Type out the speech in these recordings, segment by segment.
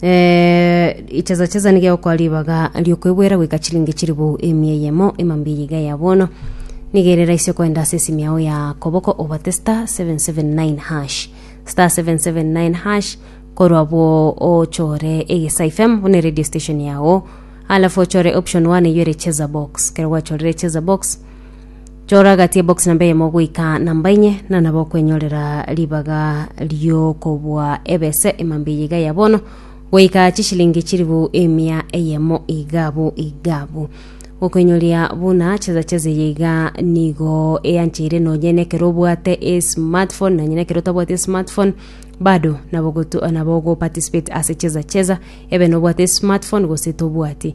Ichesa chesa nigo egokoa ribaga ri'okwegwera goika chilingi chilifu emia eyemo emambe eye iga ya bono nigo ere raisi okoenda ase esimu yao ya koboko obate star 779 hash star 779 hash korwa abwo ochore egesa fm buna eradio station yago alafu ochore option one eywo ere chesa box ekero gwachorire chesa box chora gati ebox namba eyemo goika namba enye na nabo okwenyorera ribaga riokobua ebese emambe eye iga ya bono goika chishilingi chiribu emia eyemo igabu igabu gokwenyoria buna cheza cheza eye iga nigo eancheire nonye nekero obwate esmartphone nonye nekero otabwati esmartphone bado nabo gotu nabo ogoparticipate ase cheza cheza ebe nobwate esmartphone gose tobwati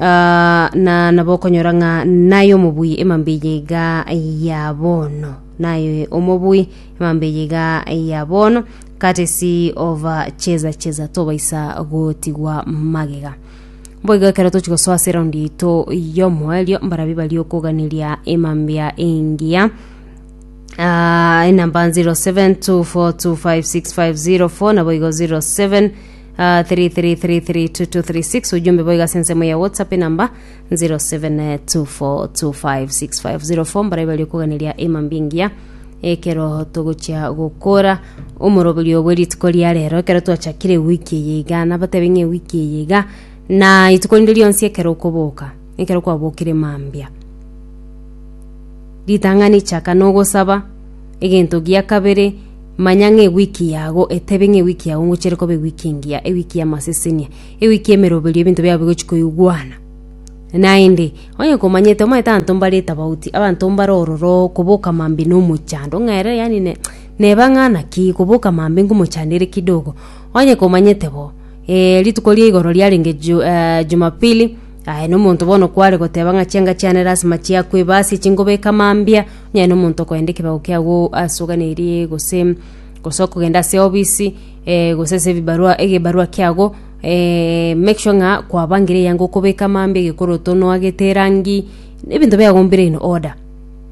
Ah, na nabo okonyora ng'a naye omobui emambe eye iga ya bono naye omobui emambe eye iga ya bono katesi ova cheza cheza tobaisa gotigwa magega boigo ekero tochi gosoa ase eraundi yaito y'omoerio mbarabwo bari okoganeria emambia engiya Ah, enamba 0724256504 naboigo 07 Ah, 3333236 ujumbe boiga ase ensemo ya whatsapp enamba 0724256504 mbarai bari okoganeria emambingia ekero togochia gokora omoroberio bwe rituko ria rero ekero twachakire wiki eye iga nabatebe ng'e wiki eye iga na ituko rinde rionsi ekero okoboka ekero kwabokire mambia ritang'ani chaka nogosaba egento gia kabere Manya ng'a ewiki yago etebe ng'a ewiki yago ngochere koba ewiki engiya, ewiki y'amasesenia, ewiki y'emeroberio ebinto biabo bigochi koigwana. Naende, onye komanyete, omanyete abanto mbare etabauti, abanto mbare ororo koboka mambe na omochando, ng'a ere yaani ne- neba ng'a naki koboka mambe ngomochando ere kidogo. Onye komanyete bo, eh rituko ria igoro riarenge ju- eh jumapili, aye na omonto bono kware goteba ng'a chianga chiane lasima chiakwe, basi chingobeka mambia, Onye nomonto okoenda ekebago kiago ase oganeirie gose gose okogenda ase ofisi eh, gose ase ebibarua egebarua kiago eh, make sure ng'a kwabangire eyango okobeka amambe egekoroto noagete erangi ebinto biago mbire in order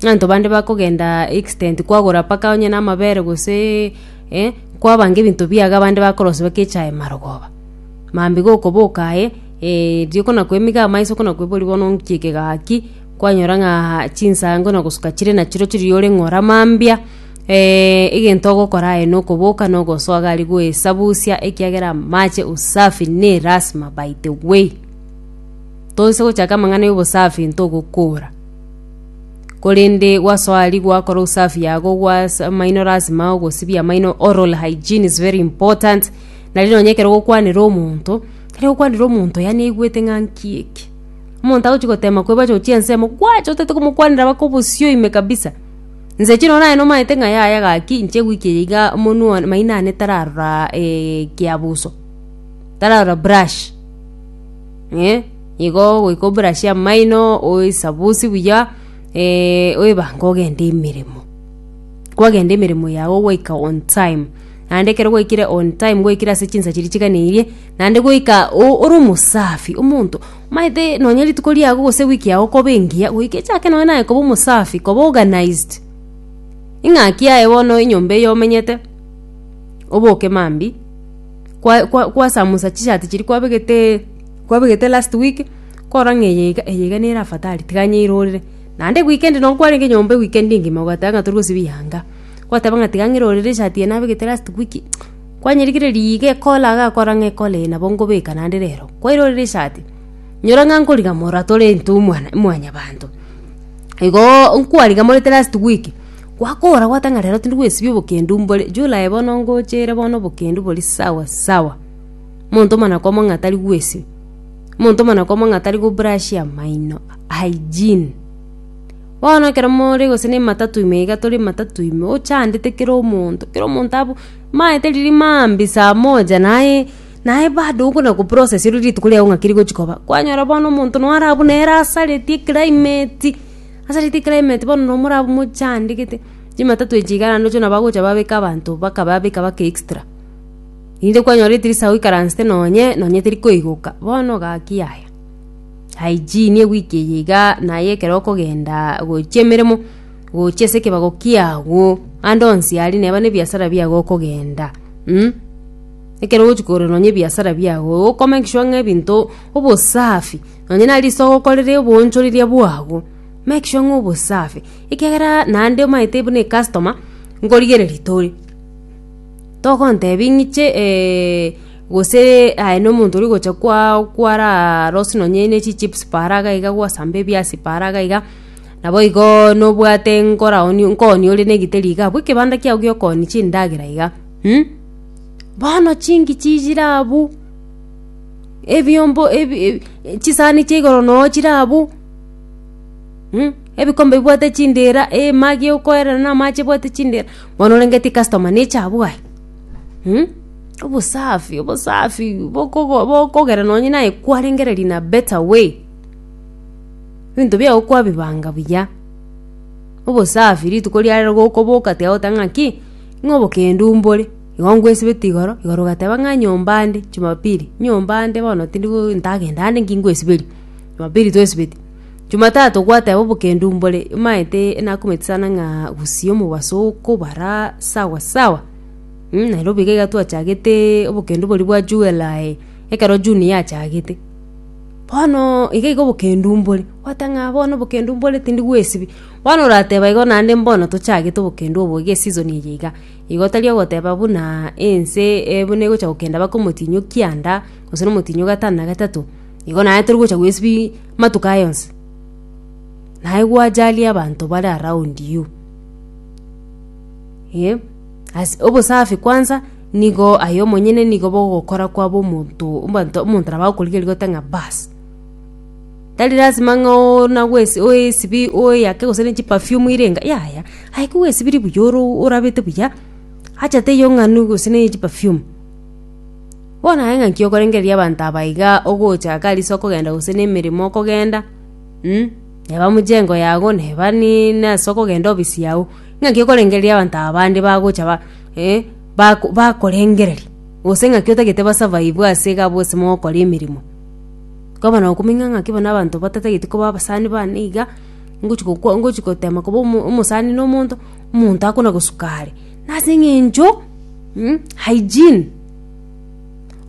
abanto bande bakogenda extent kwagora mpaka onye na amabere gose eh, kwabanga ebinto biago abande bakorosia mpaka echae marogoba mambia gokoboka aye eh, riroko nakoimiga amaiso ko nakoebori bono nchieke gaki. Kwanyora ng'a chinsango na gosuka chire nachiro chiri ore ng'ora mambia, eh, egento ogokora aye nokoboka nogosoa gari goesabusia ekiagera amache usafi ne lasima by the way. Tonse gochaka amang'ana ya obosafi ntogokora. Korende gwasoa aria gwakora usafi yago gwasa amaino lasima ogosibia amaino oral hygiene is very important. Nari nonye ekero ogokwanera omonto, ekero ogokwanera omonto yaani aigwete ng'a nki eke. Omonto agochi gotema koeba acha gochia ensemo, gwacha otagete komokwanera baka obosio ime kabisa. Nse chire nonye nomaete ng'a yaya gaki, inche gwiki eye iga omonwe one maino ane tararora eh ekeabuso, tararora brush eh, igo ogoika oburashie amaino, oesabusie buya oebange ogende emeremo, kwagenda emeremo yago gwaika on time. Naende ekero gwaikire on time gwaikire ase chinsa chiria chiganeirie, naende goika o- ore omosafi, omonto omanyete nonye rituko riago gose ewiki yago koba engiya, goika echake nonye naye koba omosafi, koba organised. Ing'aki yaye bono enyomba eyio omenyete, oboke mambia, kwa- kwa- kwasamusa chishati chiria kwabegetee kwabegete last week, korora ng'a eye iga eye iga nere afadhali, tiga nyeirorere. Naende weekend nonye kwarenge nyomba ewikendi engima, ogateba ng'a tori gosibia yanga. Goteba ng'a tiga ng'ire orere eshati eye nabegete last week kwanyerigire riga ekora iga akora ng'a ekora eye nabo nkobeka naende rero kwaire orere eshati nyora ng'a nkoriga mora tore into omwana mwanyabanto igoo nkwariga more the last week gwakora gwateba ng'a rero tindi gwesibia obokendu mbore July bono ngochere bono obokendu bore sawa sawa monto omonyakomo ng'a tari gwesibia monto omonyakomo ng'a tari go brush amaino hygiene. Bono ekero more gose ne ematatu ime iga tore ematatu ime ochandete kera omonto kera omonto abu maete riria maambia saa moja naye naye bado okona go process ore rituko riago ng'aki rigochia koba kwanyora bono omonto noo are abwo nere asareti eclimate asareti eclimate bono noo more abwo mochandegete chimatatu echi iga naende oche nabo agocha babeka abanto baka babeka baka extra inde kwanyora etirisa oikaransete nonye nonye teri koigoka bono gaki yaya. hygiene ewiki eye iga naye ekero okogenda gochia emeremo gochia ase ekebago kiago ande onsi aria neba ne ebiasara biago okogenda mh ekero ogochia kogorera nonye ebiasara biago oko make sure ng'a ebinto obosafi nonye nare risogo okorere oboonchoreria bwago make sure ng'a obosafi ekiagera naende omanyete buna ecustoma nkorigereria tore togontebia ng'iche. Gose aye nomonto ori gocha kwao kwararose nonye ne chichips paara iga iga gwasamba ebiasi paara iga iga, naboigo nobwate nkoraonia nkoonia ore negiteri iga abwo ekebanda kiao giokoonia chindagera iga mh. Bono chingichi chire abwo, ebiombo ebi ebi chisani chia igoro noo chire abwo mh, ebikombe bibwate chindera, emagi okoerera na amache ebwate chindera, bono orengeti customer neche abwo aye. Hum? Obosafi, obosafi bokogo- bokogera nonye naye kwarengereria in a better way. Ebinto biago kwabibanga buya, obosafi rituko riarero igo okoboka tiga goteba ng'aki, ng'a obokendu mbore, igo ngwesibeti igoro, igoro ogateba ng'a nyomba nde, jumapili, nyomba nde bono tindi go ntagenda ande nki ngwesiberia, jumapili twesibeti. Jumatatu gwateba obokendu mbore imaete nakumeti sana ng'a gusii omobaso okobara sawa sawa mm Nairobi iga twachagete obokendu boria bwa July ekero June yachagete bono iga iga obokendu mbore gwoteba ng'a bono obokendu mbore tindi gwesibia bono orateba igo naende mbono tochagete obokendu obo iga eseason eye iga igo tari ogoteba buna ense e buna egocha gokenda mpaka omotinyo kianda gose na omotinyo gatano na gatato igo naye tori gocha gwesibia. Amatuko aya onsi naye gwacharia abanto bare around you. Ee, as- obosafi kwansa nigo aye omonyene nigo bogokora kwaba omonto abanto omonto nabo agokorigereria gote ng'a baas, tari lasima ng'a oona gwesi oesibi oyake gose ne chiperfume ire enga yaya, aye kogwesibiri buya oro orabete buya, acha teiyo ng'anu gose ne chiperfume. Bono aye ng'aki okorengereria abanto aba iga ogocha agarisi okogenda gose nemeremo okogenda mm neba mchengo yago neba ni nase okogenda obisi yago ng'aki okorengereria abanto aba bande bagocha ba eh bako bakorengereria gose ng'aki otagete ba survive ase iga abwo ase mogokora emeremo koba nokomenya ng'aki bono abanto batatageti koba abasani bane iga ngochi gokwa ngochi gotema koba omo omosani na omonto omonto akona gosuka are. Nase eng'encho mm, hygiene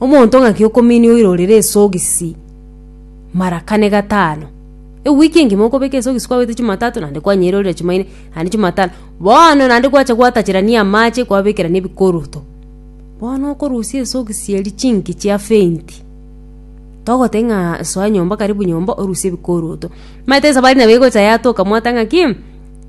omonto ng'aki okominia oirorere esogisi mara kane gatano ewiki engima okobeka esogisi kwabete chimatato naende kwanyeirorera chimaine naende chimatano bono naende gwacha gwatacharania amache kwabekera na ebikoroto bono okorusia esogisi eria chinki chia fenti togote ng'a soa nyomba karibu nyomba orusie ebikoroto maete esabari nabo egocha yatoka mwateba ng'aki.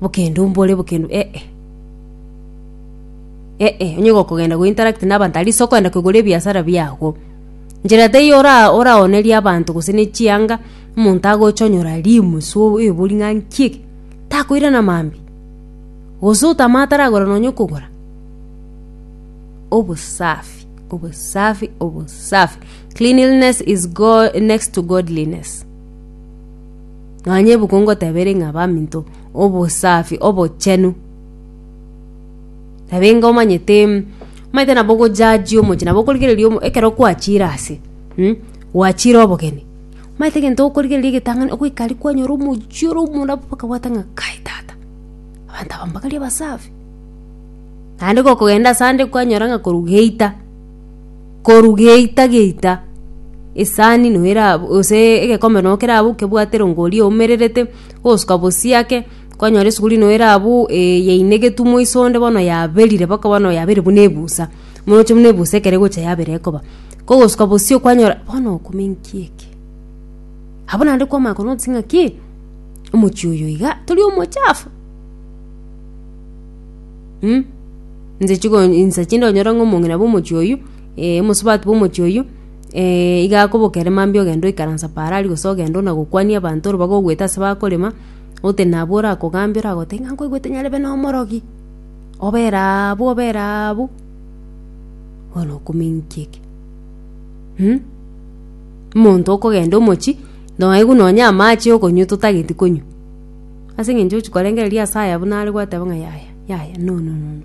Bokende ombore bokende ee. Ee onye gokogenda go interact na abanto at least okogenda kogora ebiasara biago. Njera teiyo ora oraonerie abanto gose ne chianga omonto agocha onyora rimu so oebori ng'a nki eke takoirana mambia. Gose otama ataragora nonya okogora. Obosafi obosafi obosafi cleanliness is go next to godliness. Nonya ebuku ngotebere ng'a baminto obosafi obochenu. Nabenga omanyete mm, omanyete nabo ogojaji omochie nabo okorigereria omo ekero kwachire ase mm gwachire obogeni, omanyete egento okorigereria egetang'ani ogoika aria kwanyora omochie ore omonda pu okabwata ng'a kai tata, abanto aba mbakare abasafi. Naende gokogenda asande kwanyora ng'a korwa geita. koru geita geita esani no era gose egekombe no kerabu kebwate rongo oria oumererete ogosuka bosie ake kwanyora esuguri no erabu yainegetu moiso onde bono yaberire mpaka bono yaberire buna ebusa moroche buna ebusa ekero egocha yabera ekoba kogosuka bosio kwanyora bono okome inki eke abwo naende kwamanya kwo notisie ng'a ki omochie oyo iga tori omochafu. Mm? Inse chigo insa chinde onyore ng'a omong'ina bw'omochie oyio, eh, omosubati bw'omochie oyio, eh, iga akoboka ere mambia ogenda oikaransa paaro aria gose ogenda onagokwania abanto ore bagogoeta ase bakorema, ote nabo orakogambia oragoteba ng'a nkoigwete nyarebe na omorogi, obera abu obera abu, bono oko means ki eke? Mm? Omonto okogenda omochie, naye buna onye amache yokonywa totageti konywa. Ase engencho ogochia korengereria ase aya buna are gwateba ng'a yaya yaya nono nono.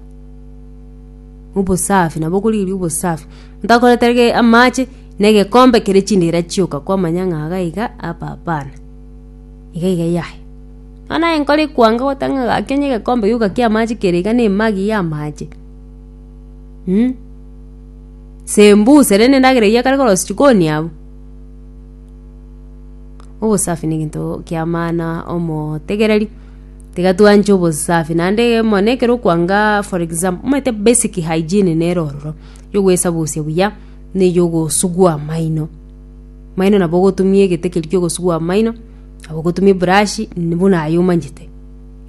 Obosafi nabo okorigereria obosafi. Ntakoreta rige amache na egekombe kere chindira chioka kwamanya ng'a iga iga apa apana. Iga iga yaya. Bono naye nkore ekwanga goteba ng'a gaki onye egekombe gioka kia amache kere iga na emagi ya amache. Sembuse rende endagera eyio ekare korosia chikoni abwo. Obosafi neginto kia maana omotegereri tiga twanche obosafi naende mono ekero okwanga for example omanyete basic hygiene nere ororo yo ogwesabusia buya na eyo ogosugua amaino amaino nabo ogotumia egete keria kia ogosugua amaino nabo ogotumia eburashi buna aye omanyete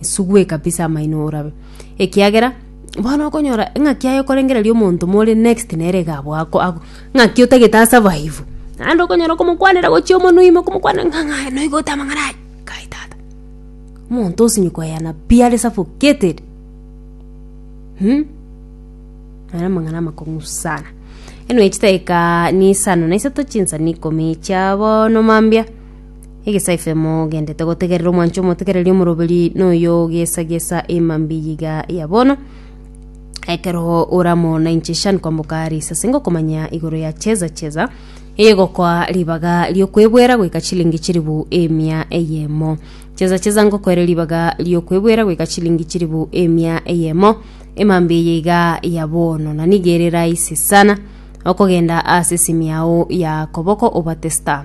esugwe kabisa amaino orabe ekiagera. Bono okonyora ng'aki aye okorengereria omonto more next nere iga abwo ako- ako- ng'aki otagete a survive. Naende okonyora okomokwanera gochia omonwe ime okomokwanera ng'a ng'a noigo ote amang'ana aya, kai tata. Omonto osinye koyana pi are suffocated nere amang'ana amakong'u sana. Anyway chidakika ne isano na isato chinsa ne ikomi chia bono mambia. Egesaife mogendete gotegerera omwancho omotegereri omoroberi noyo gesagesa emambi yiga ya bono ekero oramo na inche shan kwamboka risase ngokomanya igoro ya cheza cheza egokoa ribaga riokwebwera goika chilingi chiribu emia eyemo cheza cheza ngokoere ribaga riokwebwera goika chilingi chiribu emia eyemo emambi eye iga ya bono na nigo ere rahisi sana okogenda ase esimi yao ya koboko obate star